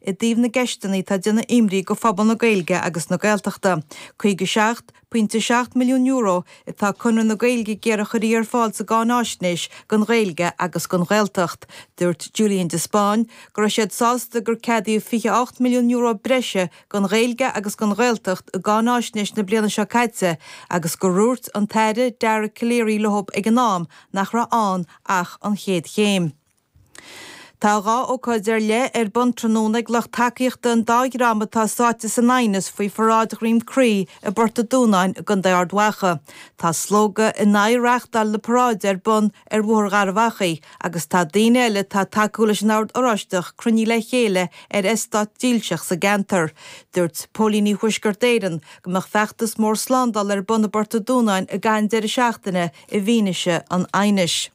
I dtaobh na gceisteanna atá ag déanamh imní do phobal na Gaeilge agus na Gaeltachta. Caoga seacht, pointe a seacht, milliún euro atá Conradh na Gaeilge ag iarraidh go gcuirfí ar fáil sa gcáináisnéis don Ghaeilge agus don Ghaeltacht. Dúirt Julian de Spáinn go raibh siad sásta gur ceadaíodh €28 milliún breise don Ghaeilge agus don Ghaeltacht i gcáináisnéis na bliana seo caite agus gur dhúirt an tAire Dara Calleary leo ag an am nach raibh ann ach an chéad chéim. Tá dhá ócáid ar leith ar bun tráthnóna ag lucht tacaíochta an dá dhream atá sáite san aighneas faoi pharáid Dhroim Crí i bPort a Dúnáin i gContae Ard Mhacha. Tá slógadh in aghaidh reáchtáil na paráide ar bun ar Bhóthar Gharbh Achaidh agus tá daoine eile atá tacúil leis an Ord Oráisteach cruinnithe le chéile ar eastát dílseach sa gceantar. Dúirt Póilíní Thuaisceart Éireann go mbeadh feachtas mór slándála ar bun i bPort a Dúnáin i gcaitheamh an deireadh seachtaine i bhfianaise an aighnis.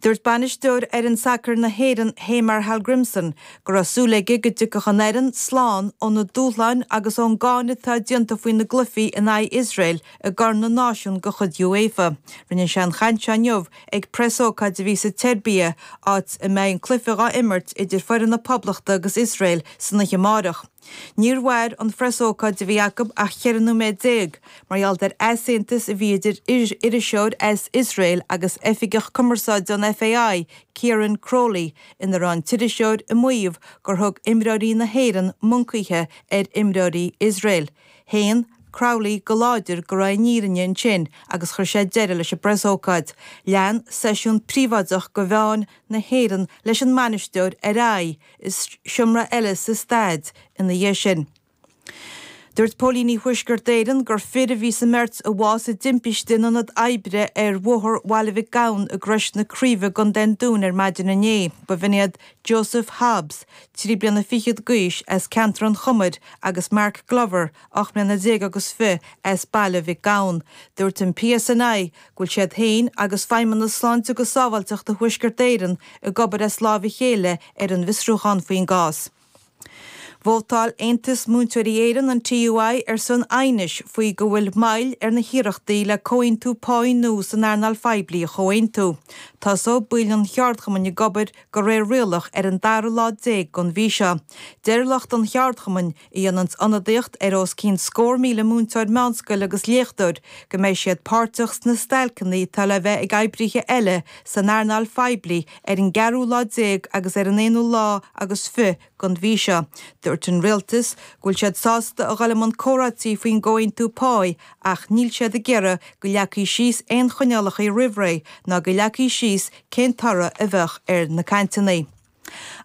Dúirt bainisteoir fhoireann sacair na hÉireann, Heimar Hallgrímsson, go raibh súil aige go dtiocfadh an fhoireann slán ó na dúshláin agus ón gcáineadh atá déanta faoi na gcluichí in aghaidh Iosrael i gCorn na Náisiún de chuid UEFA. Rinne sé an chaint seo inniu ag preasócáid a bhí sa tSeirbia, áit a mbeidh an cluiche á imirt idir foireann na Poblachta agus Iosrael san oíche amárach. Níor mhair an phreasócáid a bhí acu ach cheithre nóiméad déag mar gheall ar easaontas a bhí idir iriseoir as Iosrael agus oifigeach cumarsáide an FAI, Ciaran Crowley, ina raibh an t-iriseoir ag maíomh gur thug imreoirí na hÉireann moncaithe ar imreoirí Iosrael. Shéan Crowley go láidir go raibh an fhírinne ansin agus chuir sé deireadh leis an bpreasócáid. Lean seisiún príobháideach do mheáin na hÉireann leis an mbainisteoir ar aghaidh, i seomra eile sa staid ina dhiaidh sin. Dúirt Póilíní Thuaisceart Éireann gur fir a bhí sa mbeirt a bhásaigh sa dtimpiste in ionad oibre ar Bhóthar Bhaile Mhic Gabhann i gCrois na Craoibhe i gContae an Dúin ar maidin inné. Ba iad Joseph Hobbs, trí bliana fichead d'aois, as ceantar an Chumair agus Mark Glover, ocht mbliana déag agus fiche, as Baile Mhic Gabhann. Dúirt an PSNI go bhfuil siad féin agus Feidhmeannas Sláinte agus Sábháilteachta Thuaisceart Éireann ag obair as láimh a chéile ar an bhfiosrúchán faoin gcás. Vótáil Aontas Múinteoirí Éireann, an TUI, ar son aighnis faoi go bhfuil moill ar na hiarrachtaí le comhaontú páí nua san earnáil phoiblí a chomhaontú. Tosóidh baill an cheardchumainn ag obair go réir rialach ar an dara lá déag den mhí seo. Deir lucht an cheardchumainn, a dhéanann ionadaíocht ar os cionn scór míle múinteoir meánscoile agus léachtóir, go mbeidh siad páirteach sna stailceanna atá le bheith ag oibrithe eile san earnáil phoiblí ar an gceathrú lá déag agus ar an aonú lá agus fiche den mhí seo. Dúirt an Rialtas go bhfuil siad sásta a dhul i mbun comhráite faoin gcomhaontú páí ach níl siad ag iarraidh go leagfaí síos aon choinníollacha roimh ré ná go leagfaí síos cén toradh a bheadh ar na cainteanna.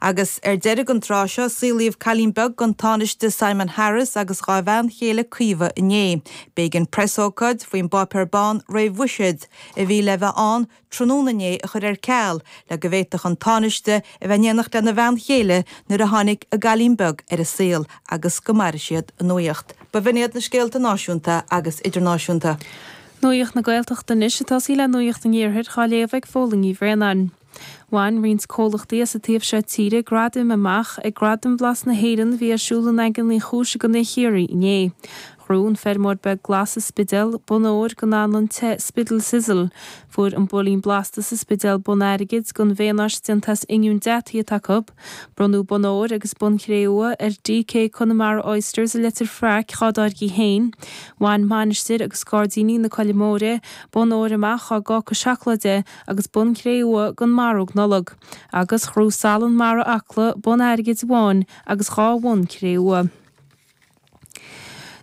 Agus ar deireadh an tráth seo, saolaíodh cailín beag don Tánaiste Simon Harris agus dhá bhean chéile Caoimhe inné. B'éigean preasócáid faoin bpáipéar bán réamhbhuiséid a bhí le bheith ann tráthnóna inné a chur ar ceal le go bhféadfadh an Tánaiste a bheith in éineacht lena bhean chéile nuair a tháinig a gcailín beag ar an saol agus go mairfidh siad a nuaíocht. B'in iad na scéalta náisiúnta agus idirnáisiúnta. Nuaíocht na Gaeltachta anois ag tosaí le nuaíocht an Iarthair dhá léamh ag Phóilín Ní Bhraonáin. Bhain roinnt comhlachtaí as an taobh seo tíre gradaim amach ag Gradaim Bhlas na hÉireann a bhí ar siúl i nDaingean Uí Chúis i gContae Chiarraí inné. Ghnóthaigh an Feirmeoir Beag Glas sa Spidéal bonn óir don anlann te Spiddal Sizzle. Fuair an Builín Blasta sa Spidéal bonn airgid don mhaonáis déanta as oinniún deataithe atá acu. Bronnadh Bonn Óir agus Bonn Cré-umha ar DK Connemara Oysters i Leitir Fraic dhá dtáirgí féin. Bhain Mainistir agus Gairdíní na Coille Móire bonn óir amach dá gcáca seacláide agus bonn cré-umha don mharóg Nollag, agus ghnóthaigh Salann Mara Acla bonn airgid amháin agus dhá bhonn cré-umha.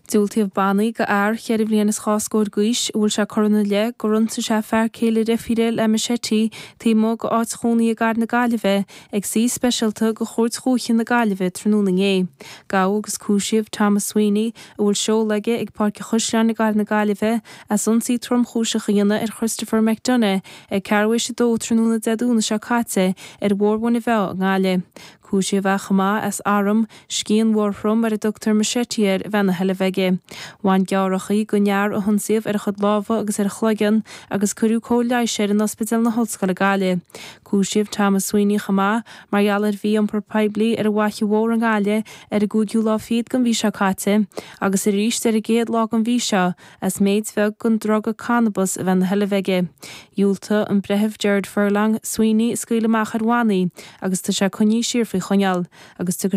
Diúltaíodh bannaí go fhear cheithre bhliain is dhá scór d'aois, a bhfuil sé curtha ina leith gur ionsaigh sé fear céile a dheirfíre le machete taobh amuigh dá áit chónaí i gCathair na Gaillimhe, ag suí speisialta go Chúirt Dhúiche na Gaillimhe tráthnóna inné. Gabhadh agus cúisíodh Thomas Sweeney, a bhfuil seoladh aige ag Páirc an Chaisleáin i gCathair na Gaillimhe, as ionsaí tromchúiseach a dhéanamh ar Christopher McDonagh ag ceathrú tar éis a dó tráthnóna Dé Domhnaigh seo caite ar Bhóthar Mhuine Mheá i nGaillimh. Cúisíodh é chomh maith as arm, scian mhórthrom ar a dtugtar machete air, a bheith ina sheilbh aige. Bhain gearrthachaí don fhear a hionsaíodh ar a chuid lámha agus ar a chloigeann, agus cuireadh cóir leighis air in Ospidéal na hOllscoile Gaillimh. Cúisíodh Thomas Sweeney chomh maith mar gheall ar mhí-iompar poiblí ar an bhFaiche Mhór i nGaillimh ar an gcúigiú lá fichead den mhí seo caite, agus arís ar an gcéad lá den mhí seo, as méid bheag den druga cannabas a bheith ina sheilbh aige. Dhiúltaigh an Breitheamh Gerard Furlong, Sweeney a scaoileadh amach ar bhannaí agus tá sé coinnithe siar faoi choinneáil agus tiocfaidh